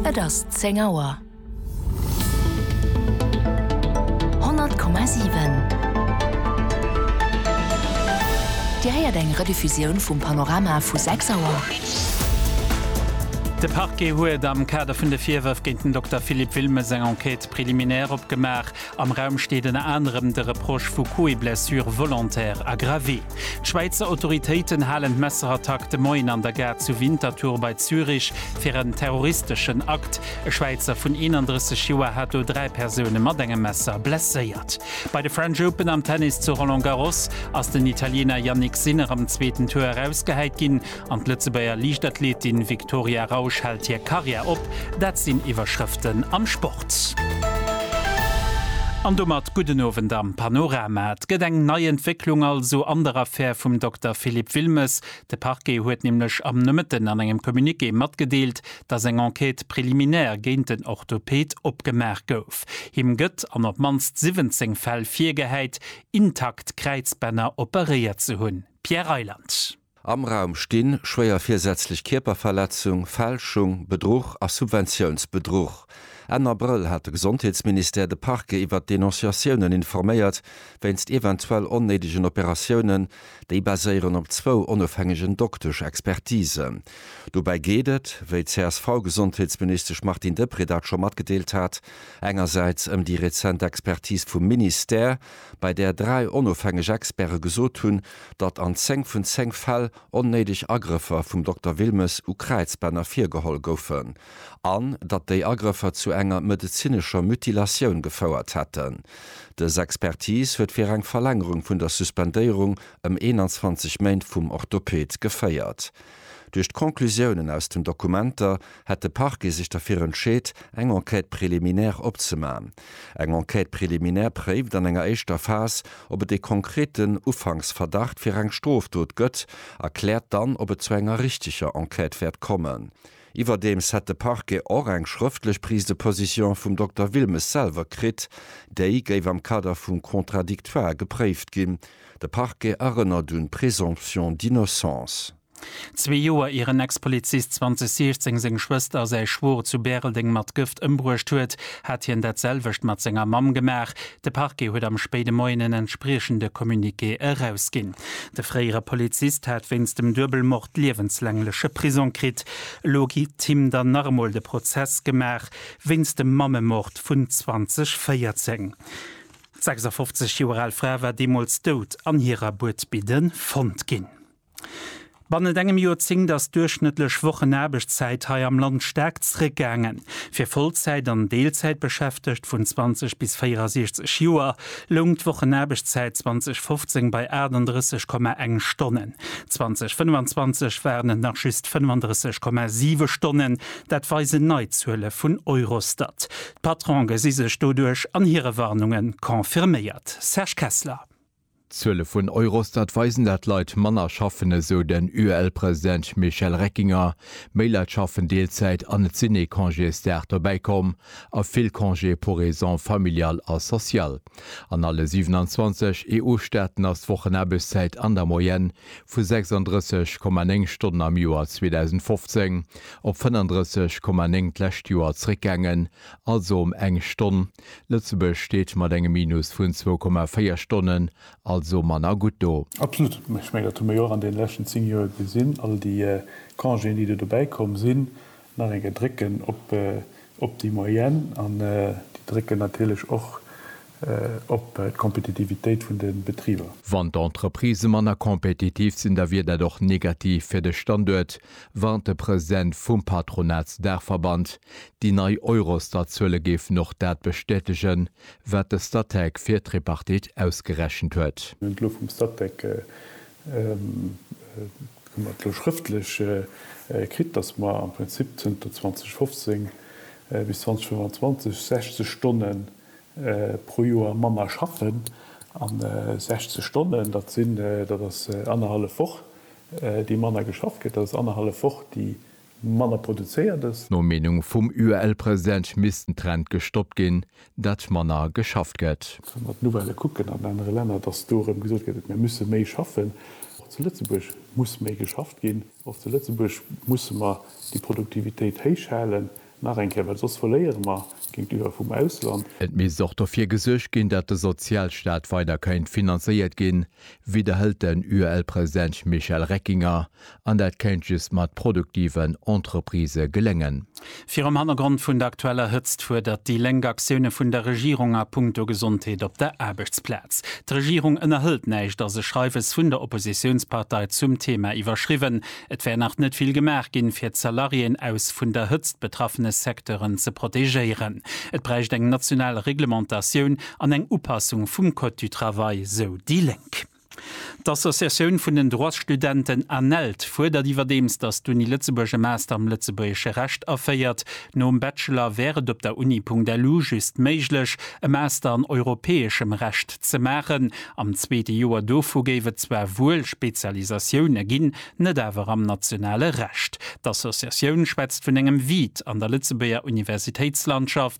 Et ass 10 Auer. 100,7 Dir héiert eng Rediffusioun vum Panorama vu 6 Auer. De Parquet huet am Kader vun de Virwërf géint den Dokter Philippe Wilmes eng Enquête préliminaire opgemaach. Am Raum steet ënner anerem de Reproche vu Coups-et-blessures volontaires aggravés. D'Schwäizer Autoritéiten halen d'Messerattack de Moien an der Gare zu Winterthur bei Zürich fir en terroristeschen Akt. E Schwäizer vun 31 Joer hat do dräi Persoune mat engem Messer blesséiert. Bei de French Open am Tennis zu Roland Garros ass den Italiener Jannik Sinner am zweeten Tour erausgehäit ginn. An d'Lëtzebuerger Liichtathletin Viktoria Rausch hält hir Karriär op. Dat sinn Iwwerschrëften am Sport. An domat gudden Owend am Panorama. Et gëtt eng nei Entwécklung also an der Affär vum Dokter Philippe Wilmes. De Parquet huet nämlech am Nomëtten an engem Communiqué matgedeelt, datt eng Enquête préliminaire géint den Orthoped opgemaach gouf. Him gëtt an op d'mannst 17 Fäll virgehäit, intakt Kräizbänner operéiert ze hunn. Pierre Reyland. Am Raum stinn, schwéier virsätzlech Kierperverletzung, Fälschung, Bedruch a Subventiounsbedruch. Enn Abrëll hat de Gesondheetsministère de Parquet iwwert d'Denonciatiounen informéiert, wéinst eventuell onnéidegen Operatiounen. Déi baséieren op zwou onofhängegen Doktesch-Expertisen. Dobäi geet et, wéi d'CSV-Gesondheetsministesch Martine Deprez dat scho matgedeelt hat, engersäits ëm déi rezent Expertis vum Ministère, bei där dräi onofhängeg Experte gesot hunn, datt an zéng vun zéng Fäll onnéideg Agrëffer vum Dokter Wilmes u Kräizbänner virgeholl goufen an datt déi Agrëffer zu enger medezinescher Mutilatioun gefouert hätten. Dës Expertis huet fir eng Verlängerung vun der Suspendéierung ëm 21 Méint vum Orthoped geféiert. Duerch d'Conclusiounen aus den Dokumenter hätt de Parquet sech derfir entscheet, eng Enquête préliminaire opzemachen. Eng Enquête préliminaire préift an enger éischter Phas, ob et ee konkreten Ufanksverdacht fir eng Strofdot gëtt a kläert dann, ob et zu enger richteger Enquête wäert kommen. Iwwerdeems hätt de Parquet och eng schrëftlech Prise de position vum Dokter Wilmes selwer kritt. Déi géif am Kader vum Contradictoire gepréift ginn. De Parquet erënnert un d'Présomption d'innocence. Zwee Joer ier en Ex-Polizist 2016 seng Schwëster a säi Schwoer zu Bäreldeng mat Gëft ëmbruecht huet, hat hien dat selwecht mat senger Mamm gemaach. De Parquet huet am spéide Moien en entspriechende Communiqué erausginn. De fréiere Polizist hat wéinst dem Duebelmord liewenslangleche Prisong kritt. Elo kritt him dann nach emol de Prozess gemaach, wéinst dem Mammemord vun 2014. 56 Joer al Fra war deemools dout an hirer Buedbidde fonnt ginn. Bannent engem Joerzéngt ass d'duerchschnëttlech Wochenaarbechtszäit hei am Land staark zréckgaangen. Fir Vollzäit an Deelzäitbeschäftegt vun 20 bis 64 Joer loung d'Wochenaarbechtszäit 2015 bei 38,1 Stonnen. 2025 waren et nach just 35,7 Stonnen, dat weisen nei Zuele vun Eurostat. D'Patronen gesi sech doduerch an hire Warnunge confirméiert. Serge Kessler. D'Zuele vun Eurostat weisen, dat Leit manner schaffen, esou den UEL-President Michel Reckinger. Méi Leit schaffen Deelzäit an et sinn ee Congésdag dobäi komm a vill Congés pour raisons familiales a sociales. An alle 27 EU-Staaten ass d'Wochenaarbechtszäit an der Moyenne vu 36,9 Stonnen am Joer 2015 op 35,9 d'lescht Joer zeréckgaangen, also ëm eng Stonn. Lëtzebuerg steet mat engem Minus vun 2,4 Stonnen also manner gutt do. Absolut. Ech mengen, dat hu mer jo och an deene leschten zéng Joer gesinn. All déi Congéen, déi do dobäikomm sinn, Nach eng Kéier drécken op déi Moyenne an déi drécken natierlech och op d'Kompetitivitéit vun de Betriber. Wann d'Entreprisë manner kompetitiv sinn, da wier dat och negativ fir de Standuert, warnt de President vum Patronatsdaachverband. Déi nei Eurostat-Zuele géifen och dat bestätegen, wat de Statec fir d'Tripartite ausgerechent huet. Elo vum Statec Hu mer et elo schrëftlech kritt, dass mer am Prinzip zënter 2015 bis 2025 60 Stonne pro Joer manner schaffen. A 60 Stonnen, dat sinn, dat ass annerhallef Woch, déi manner geschafft gëtt. Dat ass annerhallef Woch, déi Manner produzéiert es. No Meenung vum UEL-President misst den Trend gestoppt ginn, datt manner geschafft gëtt. Wa mer d'Nouvellë kucken an anere Länner, datt do erëm gesot gëtt, et mir musse méi schaffen. Och zu Lëtzebuerg muss méi geschafft ginn. Och zu Lëtzebuerg musse mer déi Produktivitéit héich halen, nach eng Kéier, well soss verléiere mer géintiwwer vum Ausland. Et misst och dofir gesuergt ginn, datt de Sozialstaat weider kéint finanzéiert ginn, widderhëlt den UEL-President Michel Reckinger, an dat kéint just mat produktiven Entreprisë geléngen. Virum Hannergrond vun der aktueller Hëtzt fuerdert déi Lénk Aktioune vun der Regierung a punkto Gesondheet op der Aarbechtsplaz. D'Regierung ënnerhëlt näischt ass e Schreiwes vun der Oppositiounspartei zum Theema iwwerschriwwen. Et wär nach net vill gemaach ginn, fir d'Salariéen aus vun der Hëtzt betraffene Secteuren ze protegéieren. Et bräicht eng national Reglementatioun. an eng Upassung vum Code du Travail, sou déi Lénk. D'Associatioun vun den Droitsstudenten ANELD fuerdert iwwerdeems, datt d'Uni Lëtzebuerg e Master am lëtzebuergesche Recht aféiert. Nom Bachelor wär et op der Uni.lu just méiglech, e Master an europäeschem Recht ze maachen. Am zweete Joer dovu géif et zwar wuel Spezialisatioune ginn, net awer am nationale Recht. D'Associatioun schwätzt vun engem Vide an der Lëtzebuerger Universitéitslandschaft.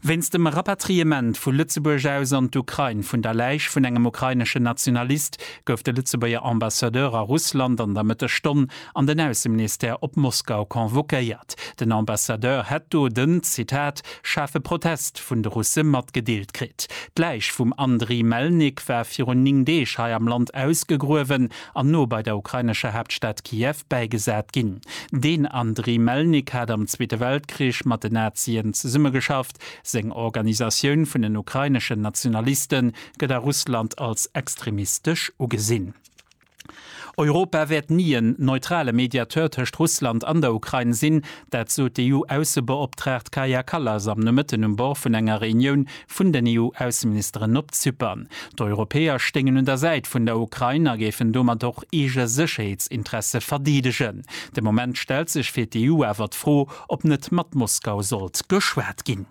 Wéinst dem Rapatriement vu Lëtzebuerg aus an d'Ukrain vun der Läich vun engem ukraineschen Nationalist gouf de Lëtzebuerger Ambassadeur a Russland an der Mëttesstonn an den Ausseministère op Moskau convoquéiert. Den Ambassadeur hätt do den, Zitat, schaarfe Protest vun de Russe matgedeelt kritt. D'Läich vum Andriy Melnik war virun 9 Deeg hei am Land ausgegruewen an no bei der ukrainescher Haaptstad Kiew bäigesat ginn. Den Andriy Melnik hat am Zweete Weltkrich mat den Nazien zesummegeschafft. Seng Organisatioun vun den ukraineschen Nationaliste gëtt a Russland als extremistesch ugesinn. Europa wäert ni en neutrale Mediateur tëscht Russland an der Ukrain sinn, Dat sot d'EU-Aussebeoptraagt Kaja Kallas am Nomëtten um Bord vun enger Reunioun vun den EU-Ausseministeren op Zypern. D'Europäer stéingen un der Säit vun der Ukrain a géifen domat och eege Sécherheetsinteresse verdeedegen. De Moment stellt sech fir d'EU awer d'Fro, ob net mat Moskau sollt geschwat ginn.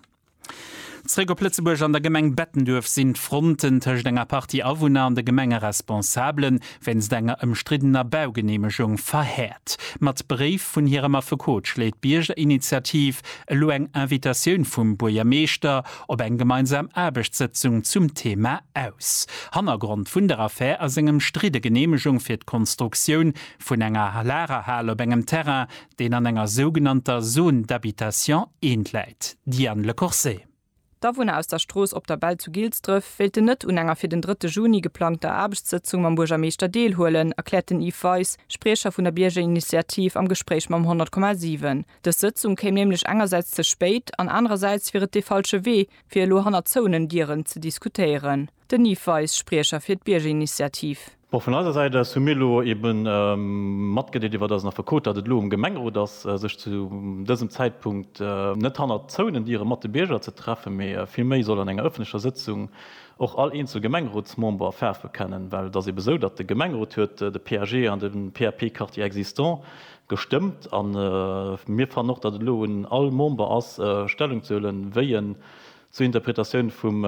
Zréck op Lëtzebuerg, An der Gemeng Bettenduerf sinn d'Fronten tëscht enger Partie Awunner an de Gemengeresponsabele wéinst enger ëmstriddener Baugeneemegung verhäert. Mat Bréif vun hirem Affekot schléit d'Biergerinitiativ elo eng Invitatioun vum Buergermeeschter op eng gemeinsam Aarbechtssëtzung zum Thema aus. Hannergrond vun der Affär ass eng ëmstridde Geneemegung fir d'Konstruktioun vun enger Lagerhal op engem Terrain, deen an enger sougenannter Zone d'habitation I läit, Diane Le Corset. D'Awunner aus der Strooss Op der Bell zu Gilsdref wéilten net un enger fir den drëtte Juni geplangter Aarbechtssëtzung mam Buergermeeschter deelhuelen, erkläert den Yves Weis, Spriecher vun der Biergerinitiativ am Gespréich mam 100,7. Dës Sëtzung kéim nämlech engersäits ze spéit an anerersäits wier et dee falsche Wee, fir elo hannert zouenen Dieren ze diskutéieren. Den Yves Weis, Spriecher fir d'Biergerinitiativ. Bon, vun eiser Säit aus hu mir elo ebe matgedeelt, iwwert eisen Affekot, datt et elo um Gemengerot ass, sech zu dësem Zäitpunkt net hannert zouenen Diere mat de Bierger ze treffen, mee villméi soll an enger ëffentlecher Sëtzung och all eenzel Gemengerotsmember Faarf bekennen. Well et ass ebe esou, datt de Gemengerot huet de PAG an de PAP Quartier existant gestëmmt a mir fannen och, datt et elo un all Member ass, Stellung ze huelen, wéi en, Zur Interpretatioun vum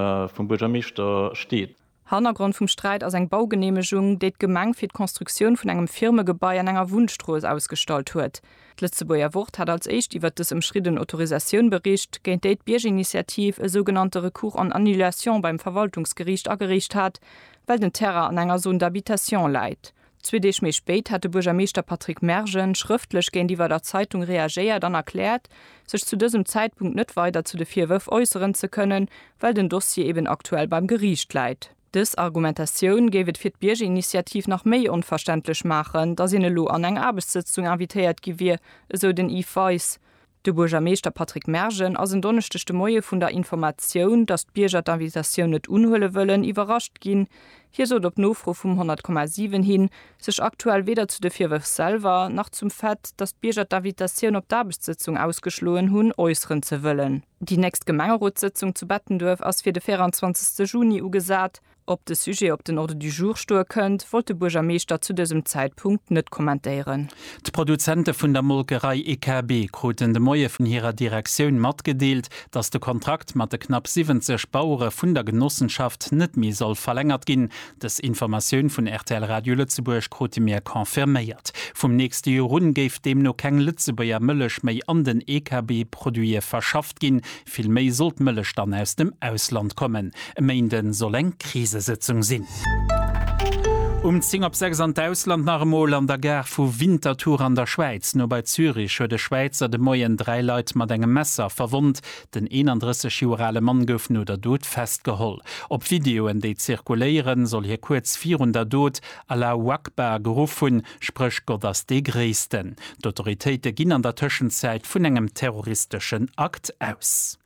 Buergermeeschter steet. Hannergrond vum Sträit ass eng Baugeneemegung, déi d'Gemeng fir d'Konstruktioun vun engem Firmegebai an enger Wunnstrooss ausgestallt huet. D'Lëtzebuerger Wort hat als éischt iwwert dës ëmschridden Autorisatioun bericht, géint déi d'Biergerinitiativ e sougenannte Recours en annulation beim Verwaltungsgeriicht agereecht hat, well den Terrain an enger Zone d'habitation läit. Zwee Deeg méi spéit hat de Buergermeeschter Patrick Mergen schrëftlech géintiwwer der Zeitung reagéiert an erkläert, sech zu dësem Zäitpunkt net weider zu de Virwërf äusseren ze kënnen, well den Dossier eben aktuell beim Geriicht läit. Dës Argumentatioun géif et fir d'Biergerinitiativ nach méi onverständlech maachen, datt een elo an eng Aarbechtssëtzung invitéiert gi wier, esou den Yves Weis. De Buergermeeschter Patrick Mergen ass en Donneschdeg de Moie vun der Informatioun, datt d'Bierger d'Invitatioun net unhuele wëllen, iwwerrascht ginn. Hie sot op Nofro vum 100,7 hin, sech aktuell weder zu de Virwërf selwer, nach zum Fait, datt d'Bierger d'Invitatioun op d'Aarbechtssëtzung ausgeschloen hunn, äusseren ze wëllen. Déi nächst Gemengerotssëtzung zu Bettenduerf ass fir de 24 Juni ugesat. Ob de Sujet op den Ordre du jour stoe kënnt, wollt de Buergermeeschter zu dësem Zäitpunkt net kommentéieren. D'Produzente vun der Molkerei EKB kruten de Moie vun hirer Direktioun matgedeelt, datt de Kontrakt mat de knapp 70 Bauere vun der Genossenschaft net méi soll verlängert ginn. Dës Informatioun vun rtl Radio Lëtzebuerg krute mir confirméiert. Vum nächste Joer un géif deemno keng Lëtzebuerger Mëllech méi an den EKB-Produite verschafft ginn, Vill méi soll d'Mëllech dann aus dem Ausland kommen. E Méinde soll eng Krisesëtzung sinn. Um 10 op 6 an d'Ausland nach emol. An der Gare vu Winterthur an der Schwäiz, no bei Zürich, huet e Schwäizer de Moien dräi Leit mat engem Messer verwonnt. Den 31 Joer ale Mann gouf no der Dot festgeholl. Op Videoen, déi zirkuléieren, soll hie kuerz virun der Dot Allahu Akbar geruff hunn. Spréch Gott ass dee Gréissten. D'Autoritéite ginn an der Tëschenzäit vun engem terroristeschen Akt aus.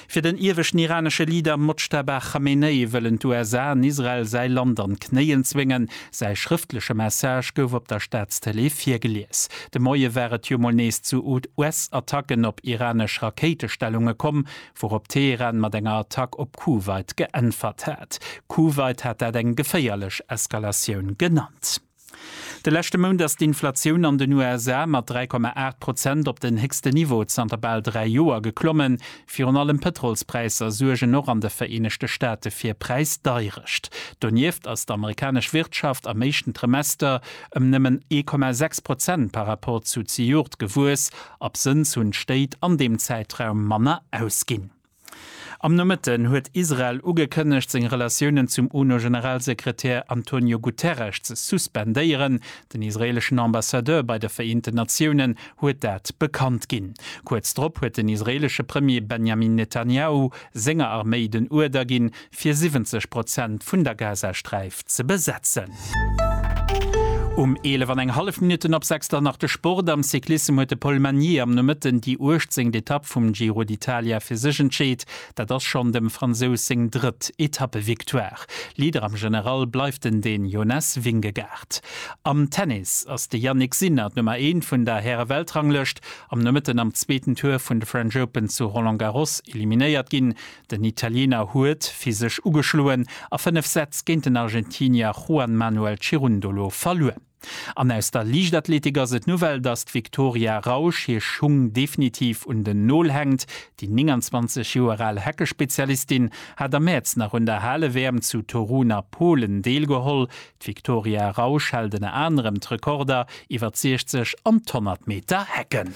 Fir den ieweschten iranesche Leader Mojtaba Khamenei wëllen d'USA an Israel säi Land an d'Knéien zwéngen. Säi schrëftleche Message gouf op der Staatstëlee virgelies. De Moie war et jo mol nees zu US-Attacken op iranesch Rakéitestellunge komm, wourop Teheran mat enger Attack op Kuwait geäntwert hat. Kuwait hat dat eng geféierlech Eskalatioun genannt. De leschte Mount ass d'Inflatioun an den USA mat 3,8 Prozent op den héchsten Niveau zanter bal dräi Joer geklommen. Virun allem d'Pëtrolspräisser suergen och an de Vereenegte Staate fir Präisdeirecht. Donieft ass d'amerikanesch Wirtschaft am éischten Trimester ëm nëmmen 1,6 Prozent par Rapport zu zejoert gewuess. Absënns hunn d'Stéit an deem Zäitraum manner ausginn. Am Nomëtten huet Israel ugekënnegt, seng Relatiounen zum UNO-Generalsekretär Antonio Guterres ze suspendéieren. Den israeeleschen Ambassadeur bei de Vereenten Natiounen huet dat bekannt ginn. Kuerz drop huet den israeelesche Premier Benjamin Netanjahu senger Arméi den Uerder ginn, fir 70 Prozent vun der Gazasträif ze besetzen. Um 11 an eng hallef Minutten op 6 dann nach de Sport. Am Cyclissem huet de Paul Magnier am Nomëtten déi 18. Etapp vum Giro d'Italia fir sech entscheet. Dat ass schonn dem Fransous seng drëtt Etappevictoire. Leader am General bleift en den Jonas Vingegaard. Am Tennis ass de Jannik Sinner d'Nummer eent vun der Häre-Weltranglëscht am Nomëtten am zweeten Tour vun de French Open zu Roland Garros eliminéiert ginn. Den Italiener huet fir sech ugeschloen a 5 Sätz géint den Argentinier Juan Manuel Cirundolo verluer. An aus der Liichtathletik ass et d'Nouvelle, dass d'Victoria Rausch hir Schung definitiv un den Nol hänkt. Déi 29 Joer al Heckespezialistin hat am Mäerz nach un der Hale-WM zu Torun a Polen deelgeholl. D'Victoria Rausch hält ënner anerem d'Rekorder iwwer d'Siechzeg an d'Honnertmeter-Hecken.